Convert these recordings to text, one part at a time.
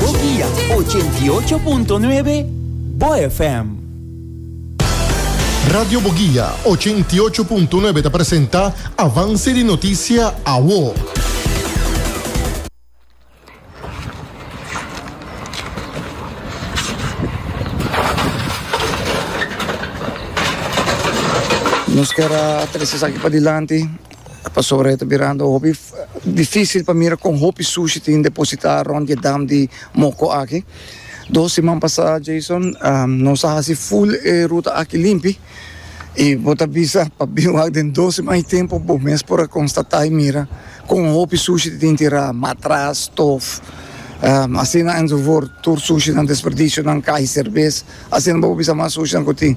Bo Guia ochenta i ocho punto nuebe, Bo FM. Radio Bo Guia ochenta i ocho punto nuebe ta presenta Avance di Noticia Awo. Nos ker a trese esaki padilanti. Pasobra e ta birando hopi difísil pa mira kon hopi sushi tin depositá rònt di e dam di Moko aki. Dos siman pasá, Jason, nos a hasi ful e ruta aki limpi i bo ta bisa pa bin wak den dos siman i tempu bo mes por a konstatá i mira kon hopi sushi tin tin tirá, matras, stof, asina enzovoort. Tur sushinan, desperdisionan, kaha i serbes Asina bo por bisa mas sushinan ku tin.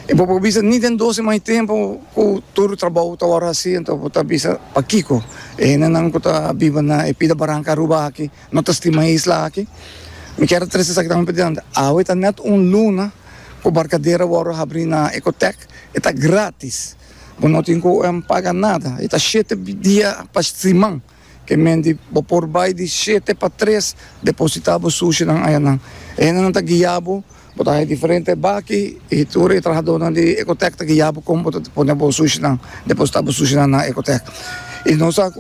I bo por bisa ni den dos siman di tempu ku tur trabou ta wòrdu hasi, anto bo ta bisa pakiko e hendenan ku ta biba na e pida baranka Aruba aki no ta stima e isla aki. Mi kier a trese esaki tambe pa dianti. Awe ta nèt un luna ku Barkadera wòrdu habrí na Ecotec. E ta gratis. Bo no tin ku paga nada. E ta shete dia pa siman. Ke men di, Bo por bai di shete pa tres depositá bo sushinan ayanan. E hendenan ta guia bo, bo ta haña diferente baki i tur e trahadónan di Ecotec ta guia bo kon bo ta pone bo sushinan, depositá bo sushinan na Ecotec. I nos a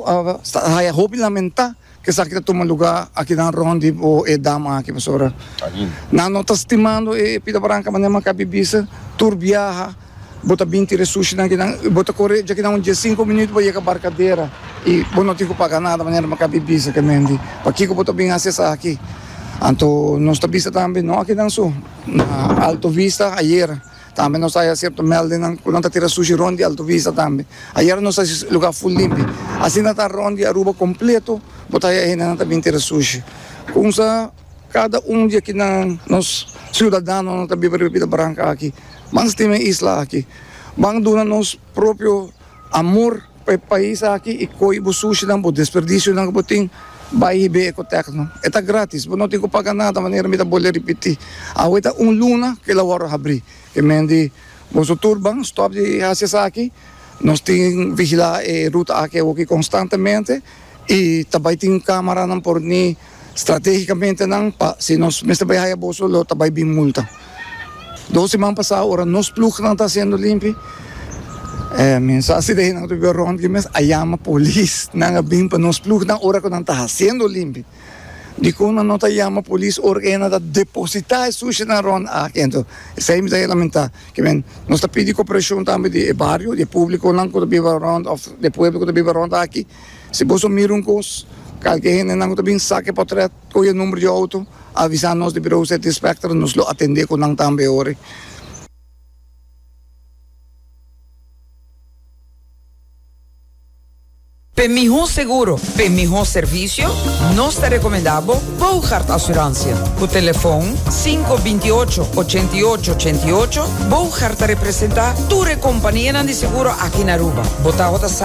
haña hopi lamentá ku esaki ta tuma lugá akinan rònt di bo e dam aki pasobra nan no ta stimando e Pita Branca manera maka bibisa tur biaha. Bo ta bin tira e sushinan kinan i bo ta kore dja kinan un dies sinku minuut pa yega barkadera i bo no tin ku paga nada manera maka bi bisa kemen di pakiko bo ta bin hasi esaki anto nos ta bisa tambe no a kinan su na alto vista ayer tambe nos ta haya sierto meldennan ku nan ta tira sushi rond di alto vista tambe ayer nos hasi e lugar full limpi asina ta rond di aruba kompleto bo ta haya hendenan ta bin tira sushi kumsa. Kada un di akinan, nos siudadanonan ta biba riba bida branca aki. Ban stima e isla aki. Ban duna nos propio amor pa e pais aki y coge bo sushinan, bo desperdicionan cu bo tin, bay hib'e Ecotecno. E ta gratis, bo no tin cu paga nada, manera mi ta bole ripiti. Awe ta un luna cu el a wordo habri. Ke men di, Boso tur ban stop di haci esaki, nos tin vigila e ruta aki awoki constantemente y ta bay tin camaranan por ni. stratégikamente nan pa si nos mester bai haya boso lo ta bai bin multa. Dos siman pasá ora nos plugnan ta hasiendo limpi men sa si dei nan ta biba rond aki mes a yama polis nan a bin pa nos plugnan ora ku nan ta hasiendo limpi. Dikon nan no ta yama polis ora ku henda ta depositá e sushinan rond aki. Anto esei mi ta lamentá ke men nos ta pidi koperashon tambe di e bario di e publikonan ku ta biba rond òf di e pueblo ku ta biba rond aki. Si boso mira un kos, kalke hendenan ku ta bin saki e potrèt, kohe e number di outo, avisa nos di Birou City Spectra, nos lo atendé ku nan tambe e ora. P'e mihó seguro, p'e mihó servisio, nos ta rekomendá bo Boogaard Asuransia. Ku telefòn sinku binti i ocho, ochenta i ocho, ochenta i ocho, Boogaard ta representá tur e kompanianan di seguro aki na Aruba. Bo ta ota sa.